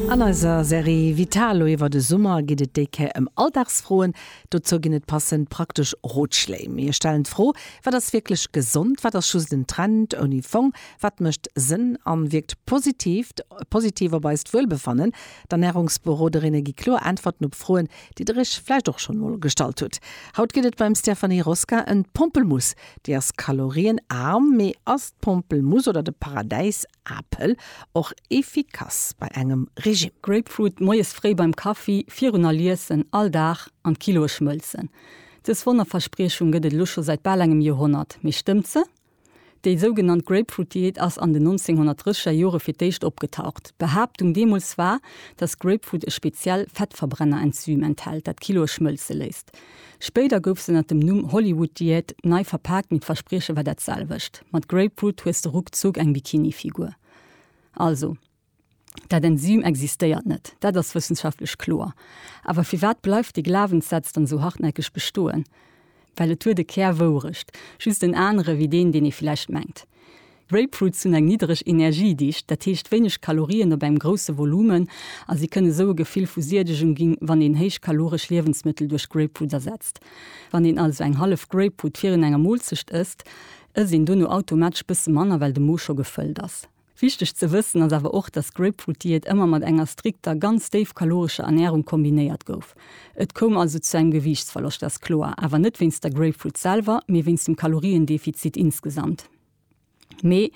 An eiser Serie Vitalo iwwer de Summer geet et déi Kéier ëm Alldagsfroen. Dozou ginn et passend praktesch Rotschléi. Mir stellen d'Fro, Wat ass wierklech gesond? Wat ass just en Trend ouni Fong? Wat mécht Sënn a wierkt positiv positiv op eist Wuelbefannen? D'Ernärungsberoderinne gi kloer Äntwerten op Froen, déi der iech vläicht och schonn emol gestallt hutt. Haut geet et beim Stéphanie Rosca ëm d'Pompelmuss. Déi ass kalorienaarm, mee ass d'Pompelmuss oder de Paradäis Apel, och efficace bei engem Regime. Grapefruit moies fréi beim Kaffi virun all Iessen, all Dag an d'Kiloe schmëlzen. Dës Wonnerverspriechung gëtt et elo scho säit bal engem Joerhonnert. Mee stëmmt se? Déi sougenannt Grapefruit-Diät ass an den 1930 er Jore fir d'éischt opgetaucht. D'Behaaptung deemools war, dass Grapefruit e speziell Fettverbrenner-Enzym enthält, dat d'Kiloe schmëlze léisst. Spéider gouf se ënnert dem Numm Hollywood Diät nei verpaakt, mee d'Versprieche war dat selwecht, Mat Grapefruit hues de ruckzuck eng Bikini-Figur. Also, dat Enzym existéiert net, dat ass wëssenschaftlech kloer. Awer firwat bleift dee Glawenssaz dann esou hartnäckeg bestoen? Well et huet e Kär Wourecht, just en anere wéi deen, deen ee villäicht mengt. Grapefruits hunn eng niddereg Energiedicht, dat heescht wéineg Kalorien op engem grousse Volumen, a si kënne sou e Gefill vu Siedegung ginn, wann een héichkaloresch Liewensmëttel duerch Grapefruit ersetzt. Wann een also eng hallef Grapefruit virun enger Moolzecht ësst, ësst een dono automatesch bësse manner, well de Mo scho gefëllt ass. Wichteg ze wëssen ass awer och, dass d'Grapefruit-Diät ëmmer mat enger strikter, ganz déifkalorescher Ernärung kombinéiert gouf. Et koum also zu engem Gewiichtsverloscht, ass kloer, awer net wéinst der Grapefruit selwer, mee wéinst dem Kaloriendefizit insgesamt. Mee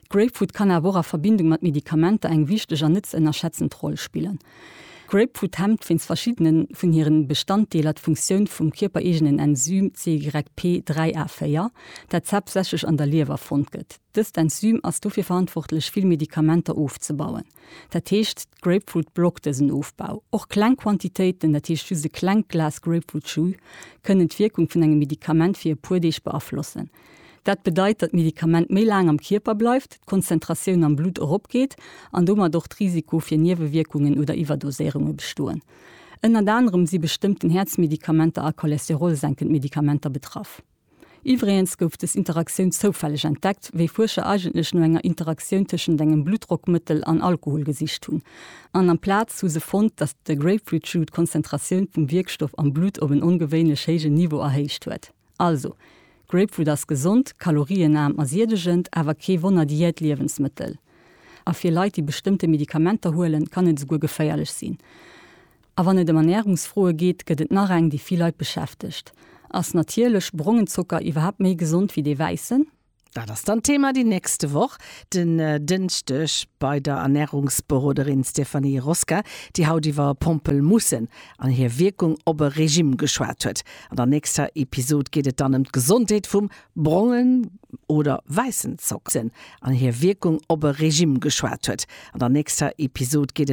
d'Grapefruit kann awer och a Verbindung mat Medikamenter eng wichteg an net ze ënnerschätzend Roll spillen. D'Grapefruit hemmt wéinst verschiddene vun hire Bestanddeeler d'Funktioun vum kierpereegenen Enzym CYP3A4, dat haaptsächlech an der Liewer fonnt gëtt. Dëst Enzym ass dofir verantwortlech, vill Medikamenter ofzebauen. Dat heescht, d'Grapefruit blockt dësen Ofbau. Och kleng Quantitéiten, dat heescht just e klengt Glas Grapefruit-Jus, kënnen d'Wierkung vun engem Medikament fir e puer Deeg beaflossen. Dat bedeit, datt d'Medikament méi laang am Kierper bleift, d'Konzentratioun am Blutt eropgeet an domat och d'Risiko fir Niewewierkungen oder Iwwerdoséierunge bestoen. Ënnert anerem si bestëmmten Häerzmedikamenter a cholesterolsenkend Medikamenter betraff. Iwwregens gouf dës Interaktioun zoufälleg entdeckt, wéi Fuerscher eigentlech no enger Interaktioun tëschent engem Bluttdrockmëttel an Alkohol gesicht hunn. An amplaz hu se fonnt, datt de Grapefruit-Jus d'Konzentratioun vum Wierkstoff am Blutt op en ongewéinlech héijen Niveau erhéicht huet. Also, Grapefruit ass gesond, kalorienarm a siedegend, awer kee Wonner-Diät-Liewensmëttel. A fir Leit, déi bestëmmte Medikamenter huelen, kann et esouguer geféierlech sinn. A wann et ëm Ernärungsfroe geet, gëtt et nach eng, déi vill Leit beschäftegt, Ass natierlech brongen Zocker iwwerhaapt méi gesond wéi dee wäissen? Dat ass dann d'Thema déi nächste Woch, den Dënschdeg, bei der Ernärungsberoderin Stéphanie Rosca, déi haut iwwer Pompelmussen an hir Wierkung op e Regime geschwat huet. An der nächster Episod geet et dann ëm d'Gesondheet vum brongen oder wäissen Zocker an hir Wierkung op e Regime geschwat huet. An der nächster Episod geet et.